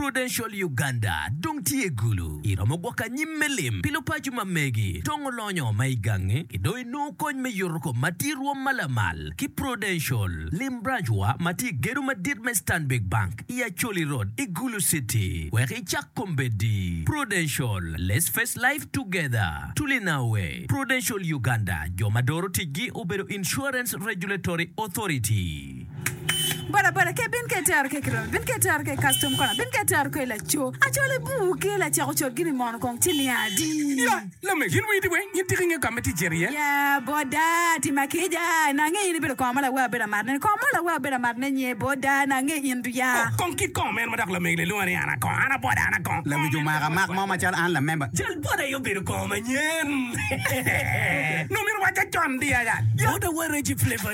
Prudential Uganda dong tye gulu. Iromo gwoko anyim me lim pi lupaco ma megi dong olonyo ma i gangi ki dong inongo kony me yuto kom ma tye rwom ma lamal ki Prudential. Lim branch wa ma tye i gedo madit me Stanbic Bank i Acholi Road i Gulu City wek icak kombeddi. Prudential, Let's face life together. Tulinaue, Prudential Uganda jo ma doro ticgi obedo Insurance Regulatory Authority. Boda boda ke bin ke tero ke kirobe bin ke tero ke custom kona bin ke tero ke laco acole buu ke laceko cot gini mono kong ci niya adi Ya lame yin wii di weng yin tika inge kame ti jer iye. Ya boda ti ma kija na nge in ibedo kong ma lawe abedo amaro ne ni kong mo lawe abedo amaro ne nye boda na nge in du ya. Oh kong kit kong meno ma dok lamegi lelunga ni ana kong ana boda ana kong lawic omaka mak mo ma calo an la member. Jal boda aye obedo kong manyen. Nongo myero owaca con di aya. Boda wa Reggie Flavour.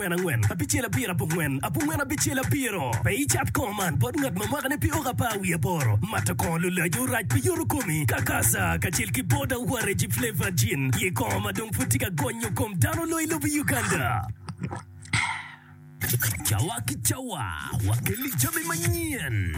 Pien angwen abicel abiro abongwen abongwen abicel abiro. Pe icat kongo man bot ngat ma mwakane pi oko apar wiye aboro. Mato kongo lulajo rac pi yoto komi, kakasa, kacel ki boda waregi flavored gin. Ye kongo ma dong pud tye ka gonyo kom dano loyo i lobo Uganda. Cawa ki cawa, wakelli jami manyen.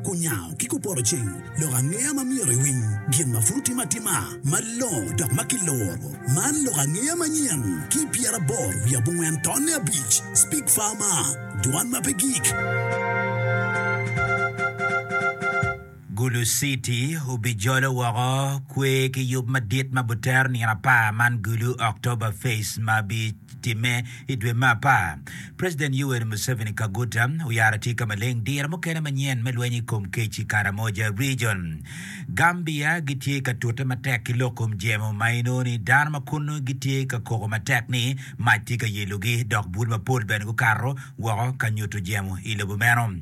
Kunyango ki kuporoceng lok angeya ma myero iwiny gin ma pud otime atima malongo dok ma kiluro. Man lok angeya manyen ki pyeraboro wiye abongwen tonne abic, Speak Farmer, Dwan ma pe gik. Gulu City obijolo woko kwer ki yub madit ma butero nino apar man Gulu October Fest ma bi. timme i dwe me apar. President Yoweri Museveni Kaguta oyaro atika maleng diro mukene manyen me lweny i kom kec i Karamoja Region. Gambia gitye ka tute matek ki lok kom jemo ma inongo ni dano ma kunnu gitye ka koko matek ni mac tye ka yelogi dok bul mapol bene gukato woko ka nyuto jemo i lobo meno.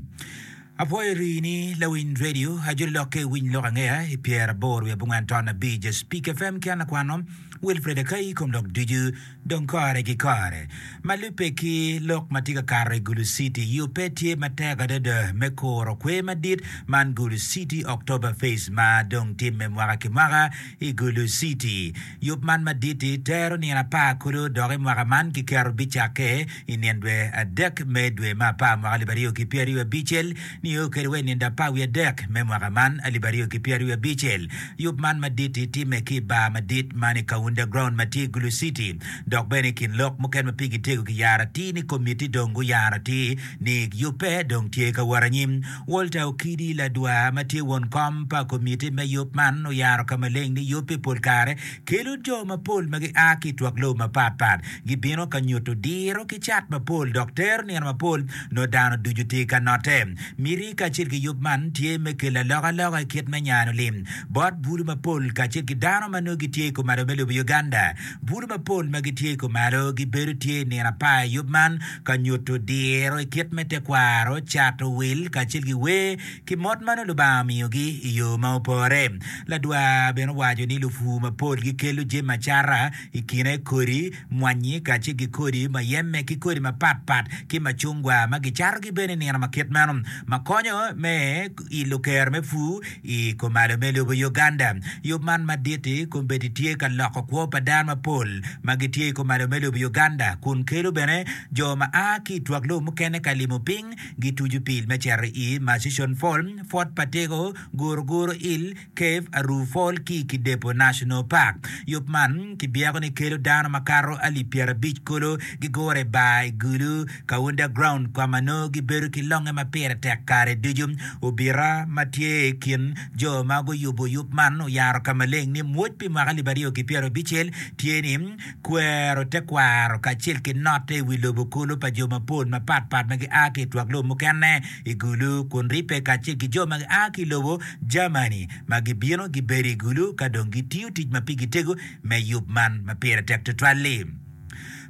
Apwoyo rii ni lawiny radio ajoli lokke winy lok angeya i pyer abor wiye abongwen ton abic ja speak FM ki an lakwano Wilfred Akai kom lok ducu dong kore ki kore ma lubbe ki lok ma tye ka kato i Gulu City yo pe tye matek adada me kuro kwer madit man Gulu City October Fest ma dong timme mwaka ki mwaka I Gulu City, yub man madit-ti tero nino apar kodo dok i mwaka man kiketo bicakke i nyen dwe adek me dwe me apar mwaka alip aryo ki pyeraryo abicel nio kede wa i nindo apar wiye adek me mwaka man alip aryo ki pyeraryo abicel. Yub man madit-ti timme ki i bar madit man i Kaunda Ground ma tye i Gulu City dok bene i kin lok mukene ma pigi tego kiyaro atir ni komiti dong guyaro atir ni yubbe dong tye ka wot anyim. Walter Okidi, ladwar ma tye won kom pa komitti me yub man, oyaro ka maleng ni yub pi pol kare kelo jo mapol ma gia ki i twak lobo mapatpat gibino ka nyuto diro ki cat mapol dok tero nino mapol nongo dano ducu tye ka notte. Miti kacel ki yub man tye me kelo alokaloka i kit me nyanyo lim bot bulu mapol kacel ki dano ma nongo gitye i komado me lobo Uganda. Bur mapol ma gitye i kumalo gibedo tye i nino apar i yub man ka nyuto diro i kit me tekwaro, cato wil, kacel ki wer ki mot ma nongo Lubanga omiyogi i yo ma opore. Ladwar bene owaco ni lupur mapol gikelo jami acata i kine kodi mwanyi kacel ki kodi muyeme ki kodi mapat pat ki macungwa ma gicatogi bene i nino ma kit meno ma konyo me ilo kero me pur I kumalo me lobo Uganda, yub man madit-ti kombeddi tye ka loko kwo pa dano mapol ma gitye i kumalo me lobo Uganda kun kelo bene jo ma a ki i twak lobo mukene ka limo piny. Gituco pil me cito i Murchison Fall, Fort Patego, Guruguru Hill, Cave, Aruu Fall ki i Kidepo National Park. Yub man kibyeko ni kelo dano makato alip pyerabic kulu gigure i bar i Gulu, Ka underground kwama nongo gibedo ki longe ma pire tek kare ducu, obita ma tye i kin jo ma guyubo yub man oyaro ka maleng ni mwoc pi mwaka alip aryo ki pyero abicel tye ni kwero tekwaro kacel ki note i wi lobo kulu pa jo mapol mapat pat ma gia ki i twak lobo mukene i Gulu kun ribbe kacel ki jo ma gia ki i lobo Germany ma gibino gibedo i Gulu ka dong gitiyo tic ma pigi tego me yub man ma pire tek tutwal-li.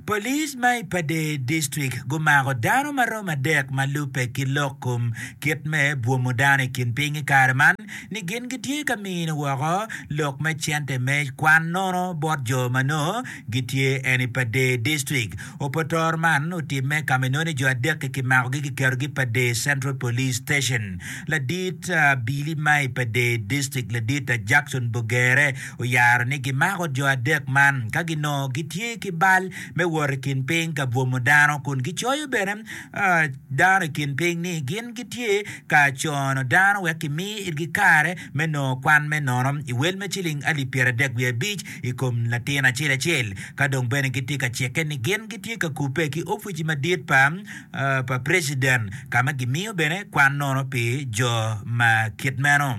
Police ma i Pader District gumako dano ma romo adek ma lubbe ki lok kom kit me bwomo dano i kin piny i kare man ni gin gitye ka mino woko lok me cente me kwan nono bot jo ma nongo gitye en i Pader District. Oputor man otimme ka ma inongo ni jo adek-ki kimakogi kiketogi i Pader Central Police Station. Ladit Billy ma i Pader District ladit Jackson Bogere oyaro ni gimako jo adek man ka ginongo gitye ki bal me wot i kin piny ka bwomo dano kun gicoyo bene dano i kin piny ni gin gitye ka cono dano wek kimi itgi kare me nongo kwan me nono i wel me ciling alip pyeradek wiye abic i kom latin acel acel. Ka dong bene gitye ka cikke ni gin gitye ka kubbe ki opici madit pa preciden ka ma gimiyo bene kwan nono pi jo ma kit meno.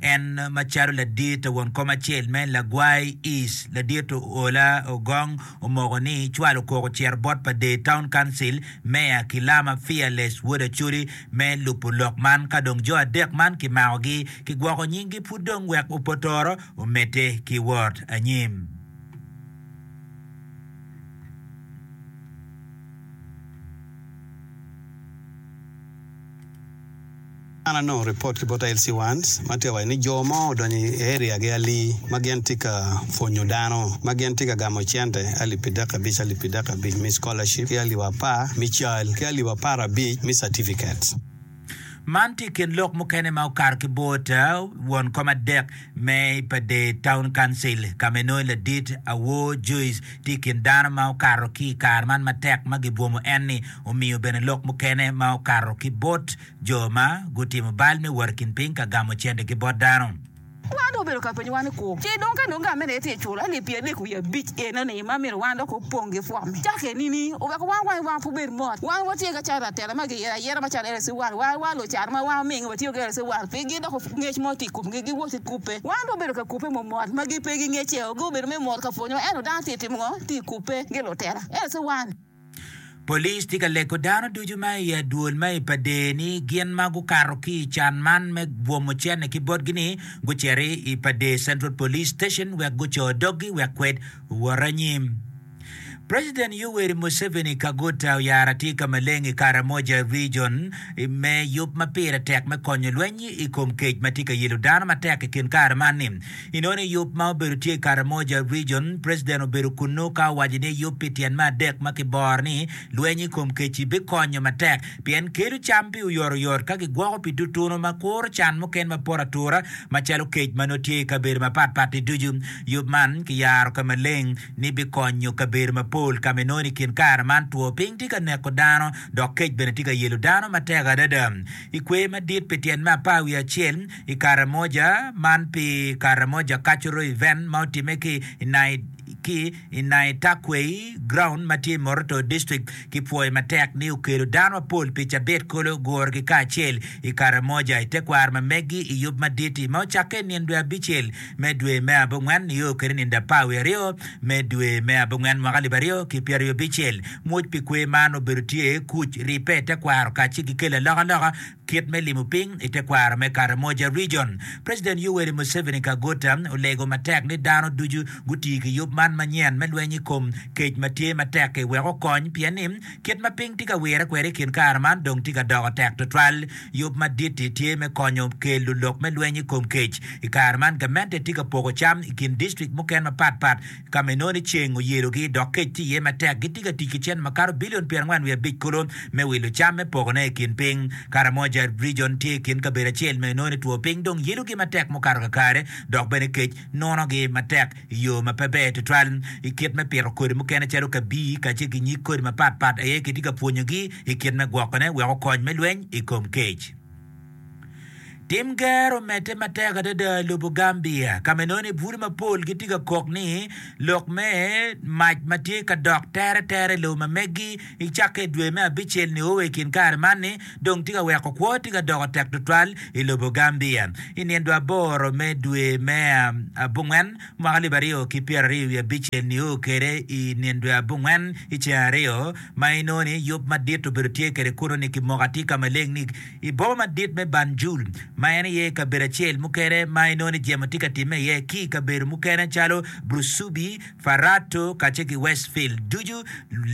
En macalo ladit to won kom acel me lagwai ic, ladit Oola Ogong omoko ni cwal okok ocito bot pa Dei Town Council Mayor ki Lama Fearless Wod Acholi me lubo lok man ka dong jo adek man kimakogi ki gwoko nyinggi pud dong wek opotoro omedde ki wot anyim. An anongo ripot ki bot Ailsie Wands ma tye ka waco ni jo mo odonyo i area gi ali ma gin tye ka pwonyo dano ma gin tye ka gamo cente alip pi dek abic alip pi dek abic me scholarship ki alip apar me cal ki alip apar abic me certificates. Man tye i kin lok mukene ma okato ki bot won kom adek me Ipadey Town Council ka ma inongo ladit Awor Joyce tye i kin dano ma okato ki i kare man matek ma gibwomo en-ni omiyo bene lok mukene ma okato ki bot jo ma gutimo bal me wot i kin piny ka gamo cendegi bot dano. Wan dong obedo ka penyowa ni, 'Kur ci dong ka nongo gang mene aye tye iculo alip pyeri adek wiye abic enoni ma myero wan dok opong ki pwok me cake nini? Oweko wan wangi wa pe obed mot. Wan watye ka cayo latela ma giyero ayera macalo LC World wa wa lo caro ma wan omingo watiyo ki LC World pi gi doko ngec mo tye i komgi gi wot ki kubbe. Wan dong obedo ka kubbe mo mot ma gi pe gi ngecce o gi obedo me mot ka pwonyowa ento dano tye timo ngo tye i kubbe gi lutela LC World. Police tye ka lego dano ducu ma i adwol ma i Pader ni gin ma gukato ki i can man me bwomo cene ki botgi ni gucito i Pader Central Police Station wek guco doggi wek kwed owot anyim. President Yoweri Museveni Kaguta oyaro atir ka maleng i Karamoja Region me yub ma pire tek me konyo lweny i kom kec ma tye ka yelo dano matek i kin kare man ni I noni yub ma obedo tye i Karamoja Region, President obedo kunnu ka owaco ni yub pi tyen me adek ma kiboro ni lweny i kom kec-ci bikonyo matek pien kelo cam pi oyotoyot ka kigwoko pi tutunu ma kuro can muken ma poto atura macalo kec ma nongo tye i kabedo mapatpat-ti ducu. Yub man kiyaro ka maleng ni bikonyo kabedo mapol ka ma i noni i kin kare man two piny tye ka neko dano dok kec bene tye ka yelo dano matek adada. I kwer madit pi tyen me apar wiye acel, i Karamoja man pi Karamoja Cultural Event ma otimme ki i Naita Quay Ground ma tye i Moroto District ki pwoyo matek ni okelo dano mapol pi cabit kolo gurogi kacel i Karamoja i tekwaro ma megi i yub madit-ti ma ocakke i nino dwe abicel me dwe me abongwen nio kwede nino apar wiye aryo me dwe me abongwen mwaka alip aryo ki pyeraryo abicel. Ngwec pi kwe man obedo tye kuc, ribbe, tekwaro kacel ki kelo alokaloka Kit me limo piny i tekwaro me Karamoja Region, President Yoweri Museveni Kaguta olego matek ni dano ducu guti ki yub man manyen me lweny i kom kec ma tye matek-ki wek okony pien ni kit ma piny tye ka wire kwede i kin kare man dong tye ka doko tek twatwal. Yub madit-ti tye me konyo kelo lok me lweny i kom kec. I kare man gamente tye ka poko cam i kin distrik mukene mapatpat. Ka ma inongo ni ceng oyelogi dok kec tye iye matek, gitye ka tic ki cente makato bilion pyerangwen wiye abic kulu me wilo cam me pokone i kin piny. Karamoja Region tye i kin kabedo acel ma inongo ni two piny dong yelogi matek mukato kakare dok bene kec nunogi matek i yo ma pe ber tutwal. I kit me pito kodi mukene calo kabii kacel ki nyig kodi mapatpat aye kitye ka pwonyogi i kit me gwokone wek okony me lweny i kom kec. Tim ger omedde matek adada i lobo Gambia ka ma inongo ni bute mapol gitye ka kok ni lok me mac ma tye ka dok tere tere i lobo ma megi i cakke i dwe me abicel-ni o wa i kin kare man-ni dong tye ka weko kwo tye ka doko tek tutwal i lobo Gambia. I nino aboro me dwe me abongwen mwaka alip aryo ki pyera aryo wiye abicel ni o kede i nino dwe abongwen i ceng aryo ma inongo ni yub madit obedo tye kede kunu ni kimoka tye ka maleng ni I boma madit me Banjul, ma en aye kabedo acel mukene ma inongo ni jemo tye ka timme iye, ki i kabedo mukene calo Brusubi, Farato, kacel ki Westfield, ducu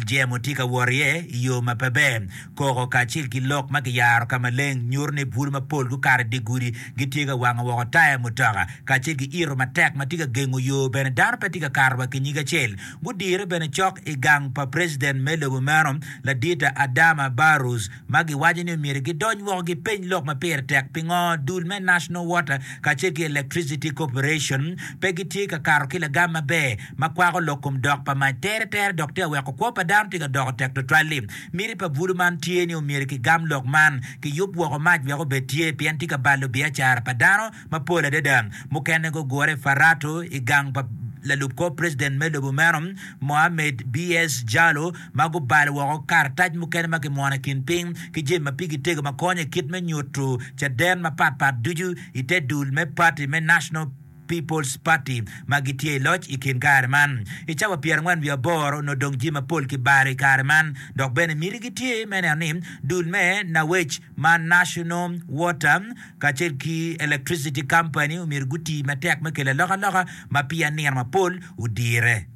jemo tye ka wot iye i yo ma pe ber. Koko kacel ki lok ma kiyaro ka maleng nyuto ni bwulu mapol gukato i dye gudi, gitye ka wango woko taya mutoka, kacel ki ito matek ma tye ka gengo yo. Bene, dano pe tye ka kato wa ki nyig acel. Gudire bene cok i gang pa preciden me lobo meno, Ladita Adama Barrows. ma giwaco ni myero gidony woko gipeny lok ma pire tek pingo dul me National Water kacel ki Electricity Corporation pe gitye ka kato ki lagam maber ma kwako lok kom dok pa mac teretere dok tye ka weko kwo pa dano tye ka doko tek tutwal-li. Miti pa bwulu man tye ni omyero kigam lok man, kiyub woko mac wek obed tye pien tye ka balo biacara pa dano mapol adada. Mukene gugure i Farato i gang pa lalub kor president me lobo meno, Mohammed BS. Jalo, ma gubalo woko karatac mukene ma kimwono i kin piny ki jami ma pigi tego ma konyo i kit me nyuto caden mapatpat ducu i te dul me pati me National People's Party ma gitye i loc i kin kare man. I cawa pyerangwen wiye aboro onongo dong jami mapol kibalo i kare man dok bene miti gitye me neno ni dul me Nawec ma National Water kacel ki Electricity Company omyero guti matek me kelo alokaloka ma pi anino mapol odire.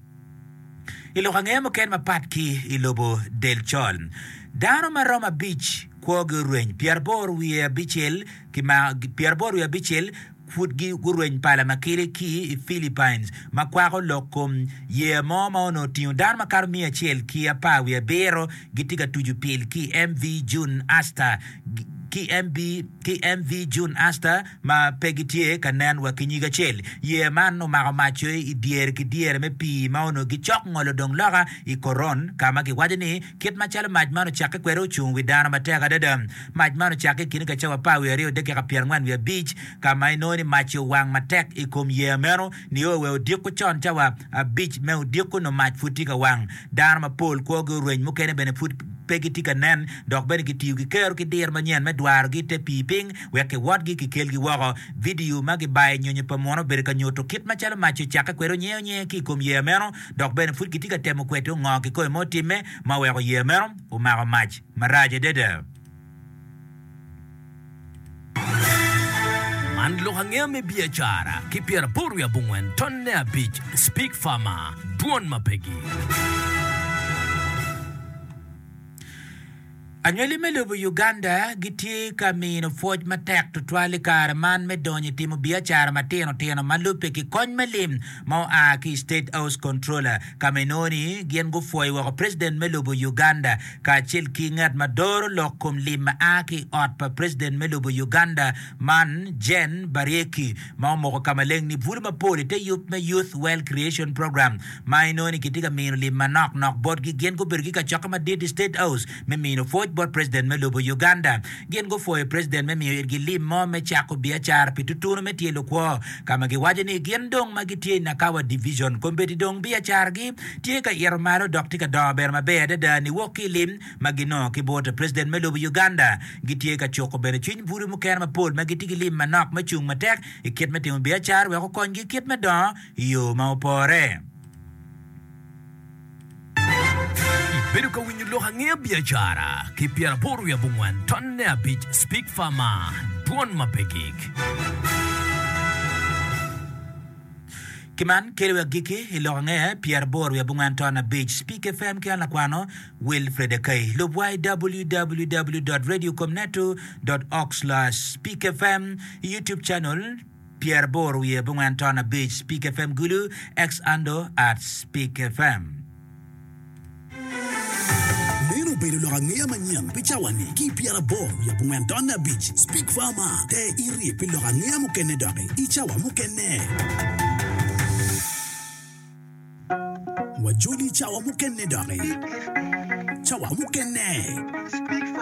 I lok angeye mukene mapat ki i lobo del col, dano ma romo abic kwogi orweny, pyeraboro wiye abicel ki ma pyeraboro wiye abicel Pud gurweny pala ma kele ki i Philippines ma kwako lok kom yeya mo ma onongo otingo dano makato miya acel ki apar wiye abiro gitye ka tucu pil ki MV June Astor ki MV June Astor ma pe gitye ka nen wa ki nyig acel. Yeya man omako mac coyo i dyere ki dyere me pii ma onongo gicok ngolo dong loka i Coron ka ma giwaco ni Kit macalo mac man ocakke kwede ocung wi dano matek adada. Mac man ocakke i kine ka cawa apar wiye aryo dakika pyerangwen wiye abic, ka ma inongo ni mac-ci owang matek i kom yeya meno nio wa odiko con cawa abic me odiko nyo mac pud tye ka wang. Dano mapol kwogi oreny, mukene bene pud pe gitye ka nen, dok bene kitiyo ki kero ki diro manyen me dwarogi i te pii piny wek kiwotgi kikelgi woko. Vidio ma gibayo i nyonyo pa muno obedo ka nyuto kit macalo mac-ci ocakke kwede onyeonye ki i kom yeya meno dok bene pud gitye ka temo kweto ngo kikoyo ma otimme ma oweko yeya meno omako mac marac adada. Man lok angeya me biacara ki pyeraboro wiye abongwen tonne abic Speak Farmer, Dwon ma pe gi. Anywali me lobo Uganda gitye ka mino pwoc matek tutwal i kare man me donyo i timo biacara matino tino ma lubbe ki kony me lim ma oa ki i State House Controller ka ma inongo ni gin gupwoyo woko President me lobo Uganda kacel ki ngat ma doro lok kom lim ma a ki i ot pa President me lobo Uganda man Jane Bariecki ma omoko ka maleng ni bulu mapol i te yub me Youth Wealth Creation Program ma inongo ni kitye ka mino lim manok nok botgi. Gin gubedo ki kacokki madit i State House me mino pwoc bot president me lobo Uganda. Gin gupwoyo president me miyo itgi lim mo me cako biacara pi tutunu me tye lukwo, ka ma giwaco ni gin dong ma gitye i Nakawa Division, kombeddi dong biacaragi tye ka ito malo dok tye ka dongo bene maber adada niwok ki i lim ma ginongo ki bot president me lobo Uganda. Gitye ka cuko bene cwiny bwodi mukene mapol ma gitye ki lim manok me cung matek i kit me timo biacara wek okonygi kit me dongo i yo ma opore. Ibedo ka winyo lok angeya biacara ki pyera aboro wiye abongwen tonne abic Speak Fama Dwon ma pe gik. Ki man kelo wi agikki i lok angeya pyera aboro wiye abongwen tonne abic Speak FM ki an lakwano Wilfred Akai. Lubwa i www.radiocomnetu.org/speakfm i Youtube Channel. Pyeraboro wiye abongwen ton abic Spik FM Gulu Ex Ando At Spik FM. Meno obedo lok angeya manyen pi cawa-ni ki Pyeraboro wiye abongwen ton abic Spik FM. Te irye pi lok angeya mukene doki i cawa mukene.